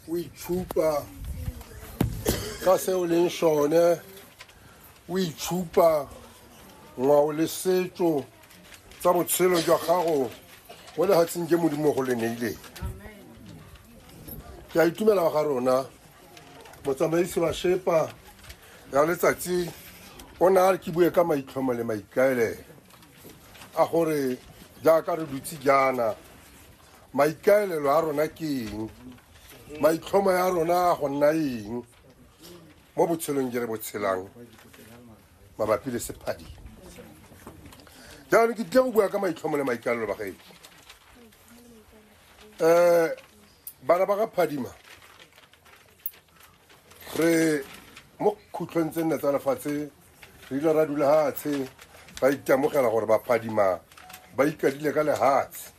o itshupa ka se o leng sone o itshupa ngwao le setso tsa botshelo jwa gago mo lefatsheng ke modimo go le neileng ke a itumela ga rona motsamaisi wa shepa ya letsatsi o ne a re ke bue ka maitlhomo le maikaelelo a gore jaaka re dutse jaana maikaelelo a rona ke eng maitlhomo ya rona a go nna eng mo botshelong je re bo tshelang mabapi le sephadi jaanong ke tle go bua ka maitlhomo le maikalelo ba gaedi um eh, bana ba ga phadima re mo khutlhong tse nne tsa lefatshe re ile ra dula hatshe ba ikamogela gore baphadima ba ikadile ka lehatshe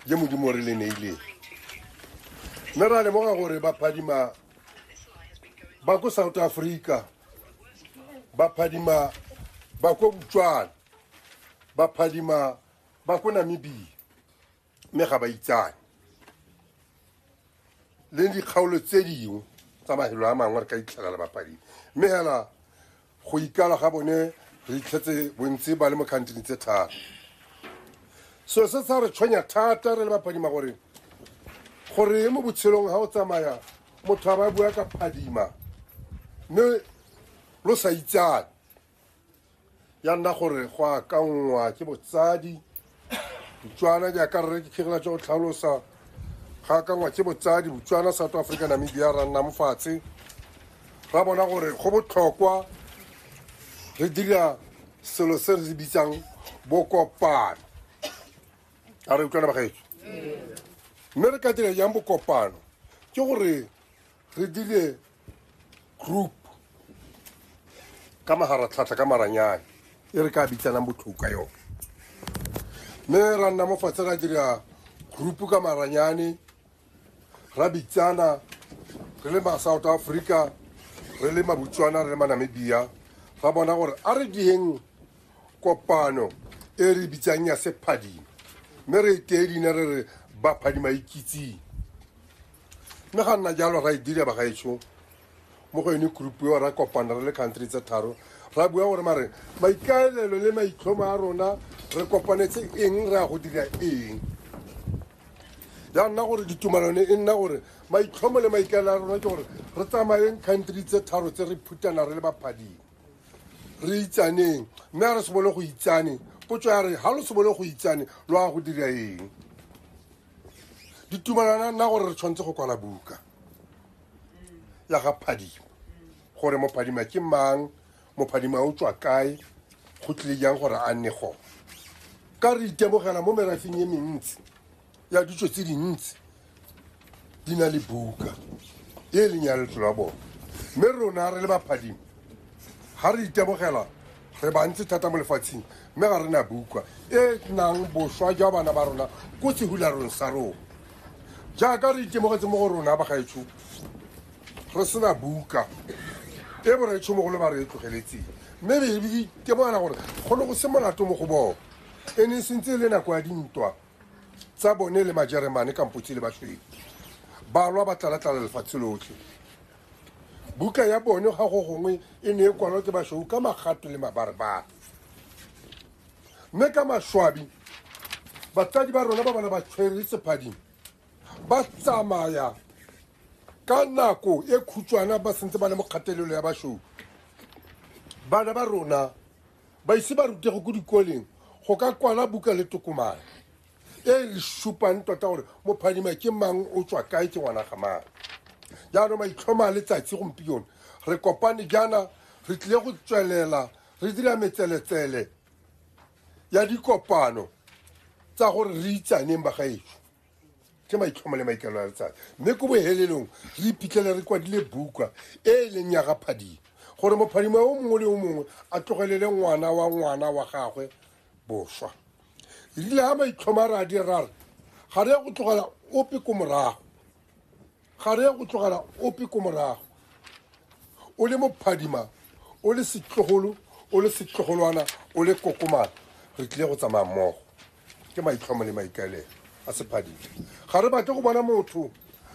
je modimo re le neileng mme ra lemoga gore baphadima ba ko south africa baphadima ba ko botswana baphadima ba ko namibia mme ga ba itsane le dikgaolo tse dingwe tsa mahelo a mangwe re ka itlhela le bapadi mme hela go ikala ga bone re itlhetse bontsi ba le mo kgantini tse thata so se sa re tshwenya thata re le bapadima gore gore mo botshelong ga o tsamaya motho a ba bua ka phadima mme lo sa itsane ya nna gore go akanngwa ke botsadi botswana jaaka rre ke kgegela tsa go tlhalosa ga akanngwa ke botsadi botswana south africa namibia ra nna mofatshe ra bona gore go botlhokwa re dira selo se re bitsang bokopano a re utlwana bagaetso mme re ka dira jang bokopano ke gore re dire group ka magaratlhatlha ka maranyane e re ka bitsanang botlhoko ka yone mme ra nna mo fatshe ra dira group ka maranyane ra bitsana re le ma-south africa re le mabotswana re le manamibia ra bona gore a re dieng kopano e re bitsang ya sephadima mme re e tee dine re re baphadima ikitsing mme ga nna jalo ra e dira bagaetsho mo go yone group eo ra kopana re le country tse tharo ra bua gore mare maikaelelo le maitlhomo a rona re kopanetse eng re ya go dira eng ya nna gore ditumalone e nna gore maitlhomo le maikaelelo a rona ke gore re tsamayeng country tse tharo tse re phutana re le baphading re itsaneng mme a re se bone go itsane potso ya re ga lo se bone go itsane lo ya go dira eng ditumalana nna gore re tshwanetse go kwala buka ya ga phadima gore mophadima ke mang mophadima o tswa kae go tlile jang gore a nne gone ka re itemogela mo merafeng e mentsi ya ditso tse dintsi di na le buka e leng ya letlo la bone mme rona re le baphadima ga re itemogela re bantsi thata mo lefatsheng mme ga re na bukwa e nang boswa jwa bana ba rona ko sehularong sa rona jaaka re itemogetse mo go rona bagaetsho re sena buka e boraetsho mogolo ba re e tlogeletseng mme re re itemogela gore go ne go se molato mo go bone e ne e sentse e le nako ya dintwa tsa bone le majeremane kampotse le baswedi balwa ba tlalatlala lefatshe lotlhe Buka ya bone ga go gongwe e ne e kwalwa ke basweu ka magatwe le mabarebare mme ka maswabi batsadi ba rona ba bana ba tshwere sephading ba tsamaya ka nako e khutshwana ba sentse ba le mo kgatelelo ya basweu bana ba rona ba ise ba rutego ko dikoleng go ka kwala buka le tokomane e re supang tota gore mophadima ke mang o tswa kae ke ngwana ga mang jaanong maitlhoma a letsatsi gompione re kopane jaana re tlile go tswelela re dira metseletsele ya dikopano tsa gore re itsaneng bagaetso ke maitlhomo le maikelo a letsatsi mme ko bohelelong re iphitlhele re kwadile buka e e leng ya gaphadimo gore mophadimo o mongwe le o mongwe a tlogelele ngwana wa ngwana wa gagwe boswa e rile ga maitlhoma re a di rare ga re ya go tlogela ope ko morago ga re ya go tlogela ope ko morago o le mophadima o le setlogolo o le setlogolwana o le kokomana re tlile go tsamaya mmogo ke maitlhomo le maikaelelo a sephadima ga re batle go bona motho